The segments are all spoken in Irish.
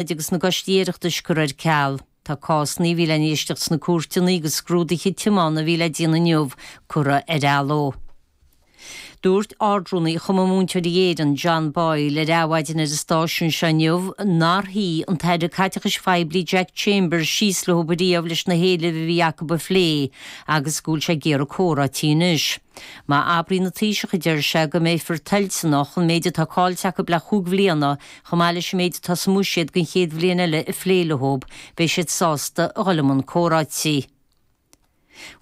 oide agus na gCoistí Oireachtais curtha ar ceal. Tá cásanna a bhí le n-éisteacht sna cúirteanna agus scrúduithe tiomána a bhí le déanamh inniu curtha ar athló. Dúirt Ardrúnaí Chumann Múinteoirí Éireann, John Boyle, ar Adhmhaidin ar an stáisiún seo inniu nár shuigh an tAire Caiteachais Phoiblí Jack Chambers síos leo ariamh leis na héilimh a bhí acu a phlé agus go bhfuil sé ag iarraidh comhráití anois. Má abraíonn an Taoiseach, deir sé, go mbeifear toilteanach ar an méid atá caillte acu le cúig bhliana Chomh maith leis an méid atá sa mBuiséad don chéad bhliain eile a phlé leothub, beidh siad sásta a dhul i mbun comhráití.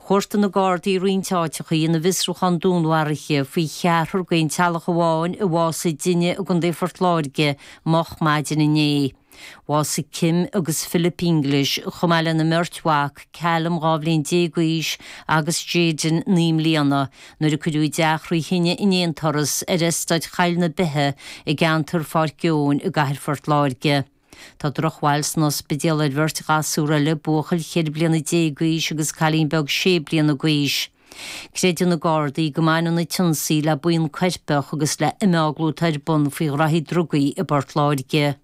Chuartaigh na Gardaí roinnt áiteacha ina bhfiosrúchán dúnmharaithe faoi cheathrar d'aon teaghlach amháin a bhásaigh i dtine i gContae Phort Láirge moch maidin inné. Bhásaigh Kim agus Philip English, chomh maith lena mbeirt mhac, Callum, dhá bhliain déag d'aois, agus Jayden, naoi mbliana, Nuair a cuireadh teach trí thine in aon turas ar eastát Choill na Beithe i gceantar Pháirc Eoin i gcathair Phort Láirge, tá drochbhail san ospidéal ar bheirt ghasúr eile, buachaill cheithre bliana déag d'aois agus cailín beag sé bliana d'aois. Creideann na Gardaí go mbaineann an t-ionsaí le buíon coirpeach agus le himeaglú atá ar bun faoi ghnaithí drugaí i bPort Láirge.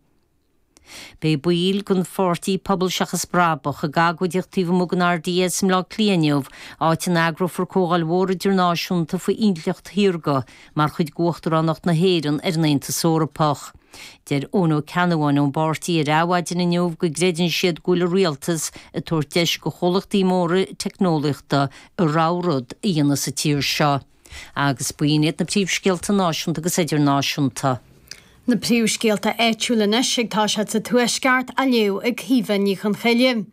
Beidh baill den pháirtí Pobal Seachas Brabach ag agóideacht taobh amuigh den RDS i mBleá Cliath inniu, áit a n-eagrófar comhdháil mhór idirnáisiúnta faoin intleacht shaorga mar chuid d'Uachtaránacht na hÉireann ar an Aontas Eorpach. Dúirt Eoin Ó Ceannabháin ón bpáirtí ar Adhmhaidin inniu go gcreideann siad go bhfuil an Rialtas ag tabhairt deis do chomhlachtaí móra teicneolaíochta a rogha rud a dhéanamh sa tír seo. Agus b'in iad na príomhscéalta náisiúnta agus idirnáisiúnta. Na príomhscéalta áitiúla anois ag tosú sa Tuaisceart á léamh ag Caoimhe Ní Chonchoille.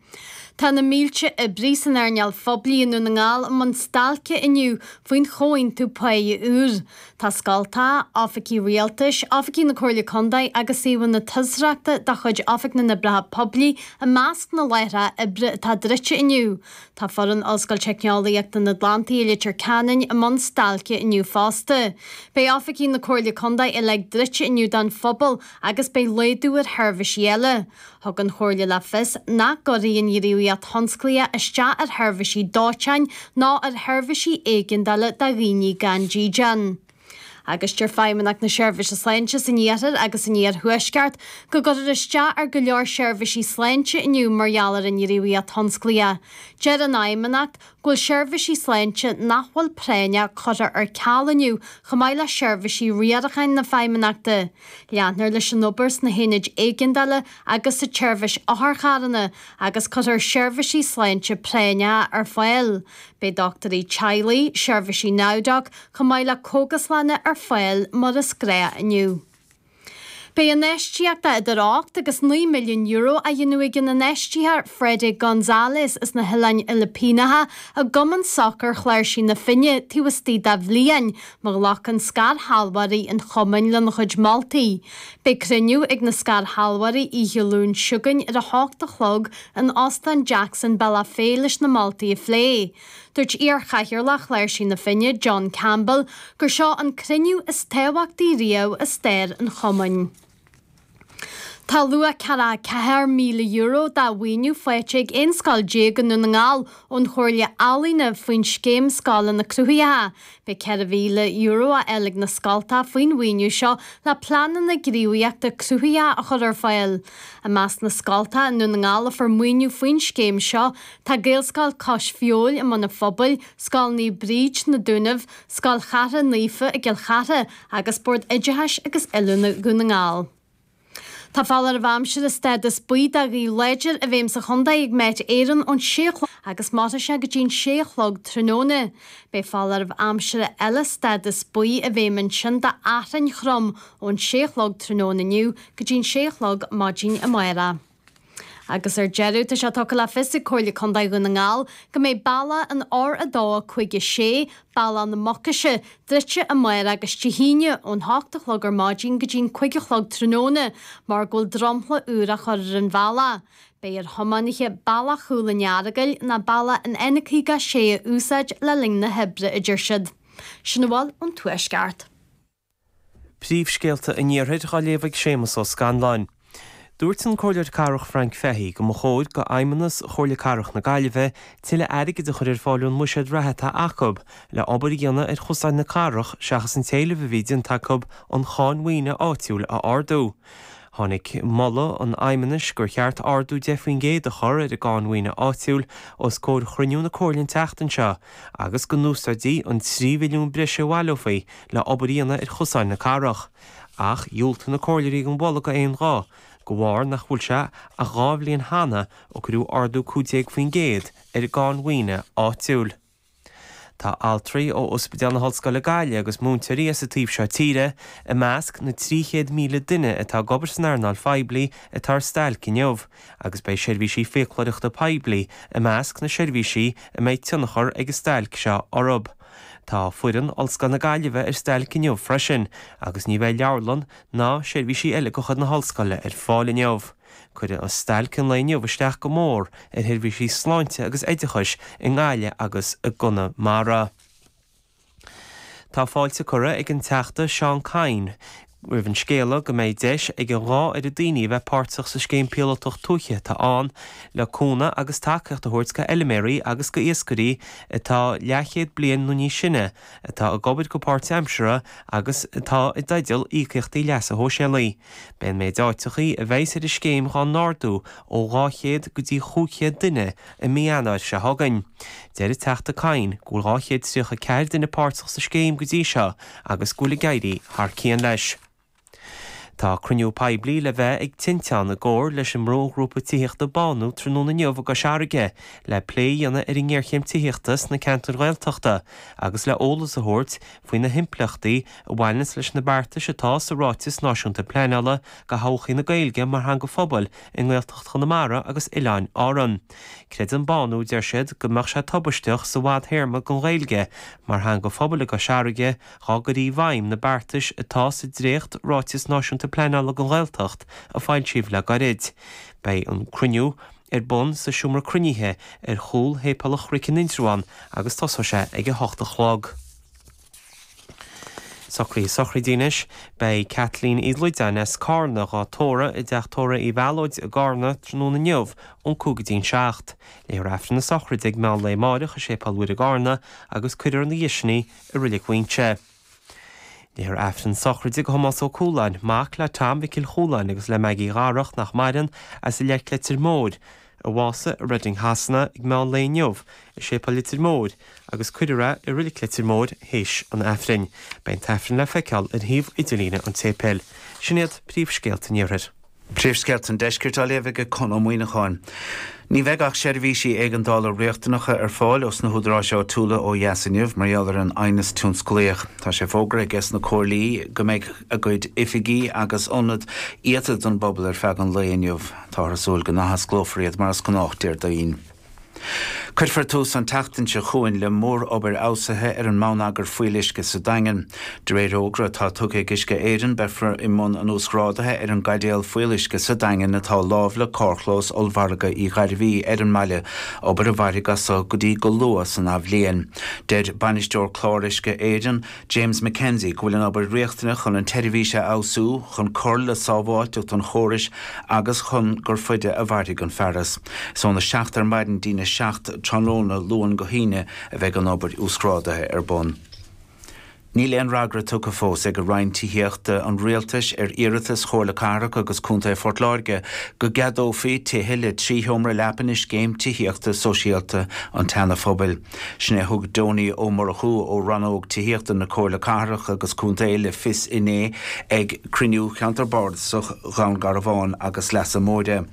Tá na mílte oibrí san earnáil phoiblí i nDún na nGall i mbun stailce inniu faoin chomhaontú pá úr. Tá scoltacha, oifigí rialtais, oifigí na Comhairle Contae agus suíomhanna turasóireachta de chuid Oifig na nOibreacha Poiblí i measc na láithreacha oibre atá druidte inniu. Tá foireann Ollscoil Teicneolaíochta an Atlantaigh i Leitir Ceanainn i mbun stailce inniu fosta. Beidh oifigí na Comhairle Contae uilig druidte inniu don phobal agus beidh laghdú ar sheirbhisí eile. Thug an Chomhairle le fios nach gcuirfidh an ghníomhaíocht thionsclaíoch isteach ar sheirbhisí dóiteáin ná ar sheirbhisí éigeandála do dhaoine gan dídean. agus deir Feidhmeannacht na Seirbhíse Sláinte san Iarthar agus san Iarthuaisceart go gcuirfear isteach ar go leor seirbhísí sláinte inniu mar gheall ar an ngníomhaíocht thionsclaíoch. Deir an Fheidhmeannacht go bhfuil seirbhísí sláinte nach bhfuil práinneach curtha ar ceal inniu chomh maith le seirbhísí riaracháin na Feidhmeannachta. Leanfar leis an obair sna hionaid éigeandála agus sa tseirbhís otharcharranna agus cuirfear seirbhísí sláinte práinneacha ar fáil. Beidh dochtúirí teaghlaigh, seirbhísí NowDoc, chomh maith le cógaslanna ar fáil mar is gnách inniu. Beidh infheistíocht de idir ocht agus naoi milliún euro á dhéanamh ag an infheistitheoir Freddy Gonzalez as na hOileáin Fhilipíneacha i gCumann Sacair Chláirsigh na Finne taobh istigh dá bhliain má ghlacann scairshealbhóirí an chumainn lena chuid moltaí. Beidh cruinniú ag na scairshealbhóirí oíche Luain seo chugainn ar a hocht a chlog in Óstán Jackson i mBealach Féich leis na moltaí a phlé. Dúirt iarchathaoirleach Chláirsigh na Finne, John Campbell, gur seo an cruinniú is tábhachtaí riamh i stair an chumainn. Tá luach €44,000 de mhaoiniú faighte ag 11 scoil i nDún na nGall ón Chomhairle Ealaíne faoin scéim Scoileanna Cruthaitheacha. Beidh €4,000 á fháil ag na scoilte faoin mhaoiniú seo le pleananna gníomhaíochta cruthaitheacha a chur ar fáil. I measc na scoilte i nDún na nGall a fuair maoiniú faoin scéim seo tá Gaelscoil Cois Feabhail i mBun an Phobail, Scoil Naomh Bríd, Na Dúnaibh, Scoil Chartha Naofa i gCill Chartha agus Bord Oideachais agus Oiliúna Dhún na nGall. Tá foláireamh aimsire stádas buí do ghaoth láidir i bhfeidhm sa chontae ag Met Éireann ón sé a chlog agus mairfidh sé go dtí an sé a chlog tráthnóna. Beidh foláireamh aimsire eile stádas buí i bhfeidhm ansin d'fhearthainn throm ón sé a chlog tráthnóna inniu go dtí an sé a chlog maidin amárach. Agus ar deireadh, tá sé tugtha le fios ag Comhairle Contae Dhún na nGall go mbeidh bealach an R2, 5, 6, Bealach na Mucaise, druidte amárach agus Dé hAoine ón hocht a chlog ar maidin go dtí'n cúig a chlog tráthnóna mar go bhfuil dromchla úr á chur ar an bhealach. Beidh ar thiománaithe Bealach Chúl an Earagail ná Bealach an N56 a úsáid le linn na hoibre, a deir siad. Sin a bhfuil ón Tuaisceart. Príomhscéalta an Iarthair á léamh ag Séamus Ó Scanláin. Dúirt an Comhairleoir Cathrach Frank Fahy go mba chóir go fheidhmeannas Chomhairle Cathrach na Gaillimhe tuilleadh airgid a chur ar fáil ón mbuiséad reatha atá acu le obair a dhéanamh ar chosáin na cathrach seachas an t-éileamh a bhí déanta acu an cháin mhaoine áitiúil a ardú. Tháinig moladh an fheidhmeannais gur cheart ardú 10 faoin gcéad a chur ar an gcáin mhaoine áitiúil os comhair chruinniú na Comhairle an tseachtain seo agus go n-úsáidfí an 3 mhilliún breise a bhaileofaí le obair a dhéanamh ar chosáin na cathrach, ach dhiúltaigh na comhairleoirí don mholadh d'aon ghuth, de bharr nach bhfuil sé ach dhá bhliain cheana ó cuireadh ardú 15% ar an gcáin mhaoine áitiúil. Tá altraí ó Ospidéal na hOllscoile Gaillimh agus múinteoirí as an taobh seo tíre i measc na 300,000 duine atá ag obair san earnáil phoiblí atá ar stailc inniu agus beidh seirbhísí fiacloireachta poiblí i measc na seirbhísí a mbeidh tionchar ag an stailc seo orthu. Tá foireann Ollscoil na Gaillimhe ar stailc inniu freisin agus ní bheidh leabharlann ná seirbhísí eile de chuid na hOllscoile ar fáil inniu. Cuirfidh an stailc an lae inniu isteach go mór ar sheirbhísí sláinte agus oideachais i nGaillimh agus i gConamara. Tá fáilte curtha ag an Teachta Seán Kyne, roimh an scéala go mbeidh deis ag an dhá oiread daoine a bheith páirteach sa Scéim Píolótach Tuaithe atá ann le cúnamh agus tacaíocht a thabhairt go fheiliméaraí agus go iascairí atá leathchéad bliain nó níos sine, atá ag obair go páirtaimseartha agus atá i dteideal íocaíochtaí leasa shóisialaigh. Beidh an méid áiteachaí a bheas ar an scéim dhá n-ardú ó dhá chéad go dtí chúig chéad duine, I mí Eanáir seo chugainn, deir an Teachta Kyne go bhfuil 234 duine páirteach sa scéim go dtí seo agus go bhfuil ag éirí thar cionn leis. Tá cruinniú poiblí le bheith ag Tinteán i gcomhar leis an mbrúghrúpa tithíochta Bánú tráthnóna inniu i gCois Fharraige le plé a dhéanamh ar an ngéarchéim tithíochta sna ceantair Ghaeltachta agus le eolas a thabhairt faoi na himpleachtaí a bhaineanns leis na beartais atá sa Ráiteas Náisiúnta Pleanála do Thodhchaí na Gaeilge mar Theanga Phobail i nGaeltacht Chonamara agus Oileáin Árann. Creideann Bánú, deir siad, go mbeadh sé tubaisteach sa bhfadthéarma don Ghaeilge mar theanga phobail i gCois Fharraige dhá gcuirfí i bhfeidhm na beartais atá sa dréacht Ráiteas Náisiúnta Pleanála don Ghaeltacht a foilsíodh le gairid. Beidh an cruinniú ar bun sa seomra cruinnithe ar chúl Shéipéal an Chnoic in Indreabhán agus tosóidh sé ag a hocht a chlog. Socraithe sochraide anois. Beidh Kathleen Uí Loideáin as Cárna dhá tórradh i dTeach Tórraidh Uí Mhealóid i gCárna tráthnóna inniu ón cúig go dtí'n seacht. Léifear Aifreann na sochraide ag meán lae amáireach i Séipéal Mhuire i gCárna agus cuirfear ina dhiaidh sin í i Roillig Mhaínse. Léifear Aifreann sochraide go Thomás Ó Cualáin, mac le Tom Mhicil Chualáin agus le Maggie Dharach, nach maireann, as an Leic, Leitir Móir, a bhásaigh i Reading Shasana ag meán lae inniu i Séipéal Leitir Móir agus cuirfear é i Reilig Leitir Móir théis an Aifrinn. Beidh an tAifreann le feiceáil ar shuíomh idirlíne an tséipéil. Sin iad príomhscéalta an Iarthair. Príomhscéalta an Deiscirt á léamh aige Conn Ó Muíneacháin. Ní bheidh ach seirbhísí éigeandála riachtanacha ar fáil ós na húdaráis áitiúla ó dheas inniu mar gheall ar an aighneas tionsclaíoch. Tá sé fógartha aige sna comhairlí go mbeidh a gcuid oifigí agus ionad iata don bpobal ar feadh an lae inniu. Táthar ag súil go n-athosclófar iad mar is gnách Déardaoin. Cuirfear tús an tseachtain seo chugainn le mórobair fheabhsaithe ar an mbonneagar fuíolluisce sa Daingean. De réir fhógra atá tugtha ag Uisce Éireann, beifear i mbun an uasghrádaithe ar an gcaidéal fuíolluisce sa Daingean atá lámh le carrchlós ollmhargadh Uí Ghairbhí ar an mbaile, obair a mhairfidh as seo go dtí go luath san athbhliain. Deir Bainisteoir Clár Uisce Éireann, James MacKenzie, go bhfuil an obair riachtanach chun an tseirbhís a fheabhsú, chun cur le sábháilteacht an chórais agus chun gur faide a mhairfidh an fearas. Is ón 7 ar maidin dtí'n 7 tráthnóna, Luan go hAoine, a bheidh an obair uasghrádaithe ar bun. Níl aon fhreagra tugtha fós aige Roinn Tithíochta an Rialtais ar iarratas Chomhairle Cathrach agus Contae Phort Láirge go gceadófaí tithe le trí sheomra leapa i scéim tithíochta sóisialta an tSeana-Phobail. Sin é a thug Donie Ó Murchú ó Rannóg Tithíochta na Comhairle Cathrach agus Contae le fios inné ag Cruinniú Cheantar Bardasach Dhún Garbhán agus Leasa Móire.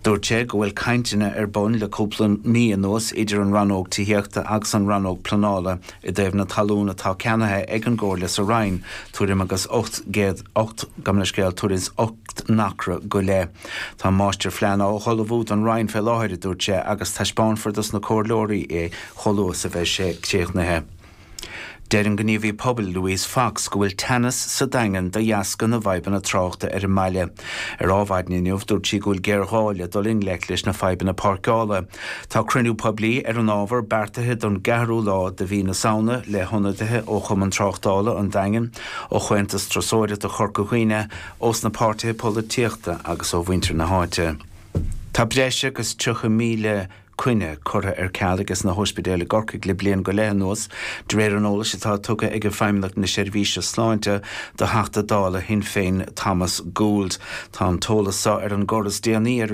Dúirt sé go bhfuil cainteanna ar bun le cúpla mí anuas idir an Rannóg Tithíochta agus an Rannóg Pleanála i dtaobh na talún atá ceannaithe ag an gComhairle sa Rinn tuairim agus 800 8 gabh mo leithscéal, tuairim is 8 n-acra go leith. Tá an máistirphlean á ullmhú don Rinn fé láthair, a dúirt sé, agus taispeánfar dos na comhairleoirí é chomh luath is a bheidh sé críochnaithe. Deir an gníomhaí pobail Louise Fox go bhfuil teannas sa Daingean de dheasca na bhfadhbanna tráchta ar an mbaile. Ar Adhmhaidin inniu, dúirt sí go bhfuil géarghá le dul i ngleic leis na fadhbanna páirceála. Tá cruinniú poiblí ar an ábhar beartaithe don gceathrú lá de mhí na Samhna le hionadaithe ó Chumann Tráchtála an Daingin, ó Chomhaontas Turasóireachta Chorca Dhuibhne, ós na páirtithe polaitíochta agus ó mhuintir na háite. Tá breis agus 30,000 coinne curtha ar ceal aiges na hóispidéil i gCorcaigh le bliain go leith anuas, de réir an eolais atá tugtha aige Feidhmeannacht na Seirbhíse Sláinte do Theachta Dála Shinn Féin Thomas Gould. Tá an t-eolas seo ar an gcor is déanaí ar